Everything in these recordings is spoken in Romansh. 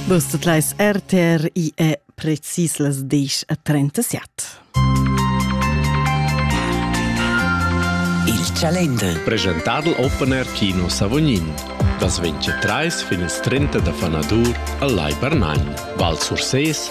Bus tot leis RTR i è precis las 10.37. Il Chalender. Presentadl Open Air Kino Savognin. Das 23 fin il 30 da Fanadur al Lai Bernagn. Val Sursés,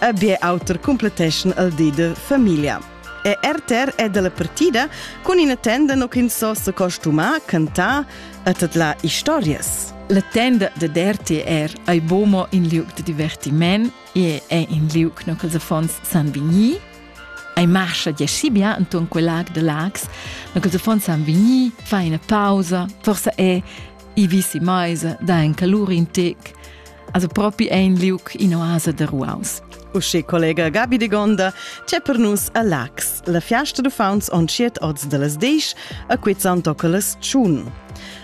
e bler auter cumpletteschan el di de famiglia. E RTR è della partida cun ina tenda no ch'ins so se costumar, cantar e tadlar historias. La tenda de RTR ei bomo in liug de divertiment e è in liug no ch'ils affons san vegnir. Ei marcha di Scibia enton quel lag de Lags, no ch'ils affons san vegnir, fa ina pausa, forsa è i visi meisa, da en calur in tec. Also propi ein liug in oasa da ruaus. Uschi collega Gabi de Gonda, c'è per nus a Lax, la fiasta d'uffants on tsiet oz de las disch a quizzan tocolas tschun.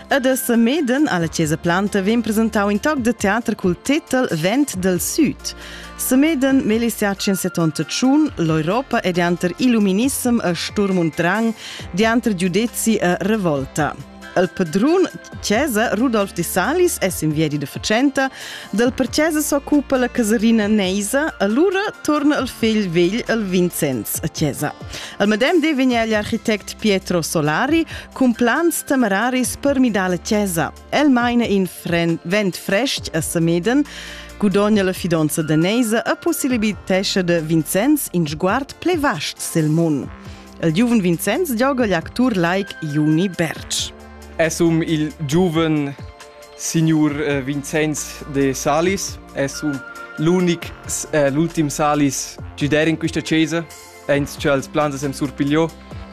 Ed a Semeden alla Chiesa Planta vem presentau in toc de teater cul titel Vent del Süd. Semeden melicia 171 l'Europa e dianter illuminissem a sturm und drang, dianter giudezi a revolta. Il padrun Cesa Rudolf di Salis es in viedi da fatschenta, dal per Cesa s'occupa la casarina Neisa, allura torna il figl vegl al Vincenz a Cesa. Al medem di vegn egl architect Pietro Solari cun plans temeraris per midar la Cesa. El maina in vent frest a Sameden, gudogna la fidanza da Neisa e possibilitescha da Vincenz in sguard ple vast sil mun. Il giuven Vincenz gioga l'actur laic Juni Bertsch. Es um il giuven signur eh, Vincenz de Salis, es um l'unic, eh, l'ultim Salis gider in questa chiesa, eins cha els plans sem surpigliò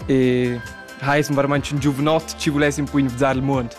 e ha es varmanch un giuvenot ci vuless un po invizzar il mund.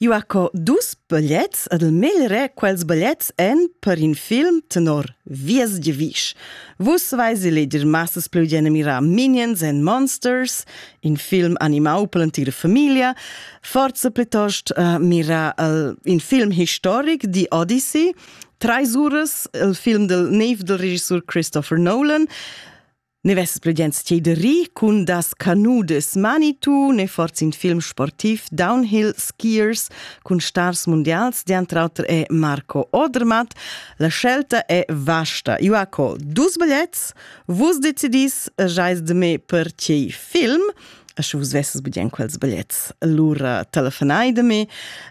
Eu ha co dus bigliets ed il meglder quels bigliets èn per in film tenor Vies giavisch. Vus vais eleger massas plü generirà Minions and Monsters, in film animau per l'entira famiglia, forza plitost uh, mira el, in film historic di Odyssey, Treis uras, il film del neiv del regissur Christopher Nolan, Ne vesses pli gens tier de ri cun das canudes Manitou, ne forz in film sportiv Downhill Skiers cun stars mundials, diantre auter è Marco Odermatt, la scelta è vasta. Io ha co dus bigliets, vus decidis, jais de me per tiei film, a sche vus vesses budien quels bigliets, lura telefonai de me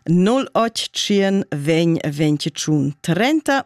081 20 21 30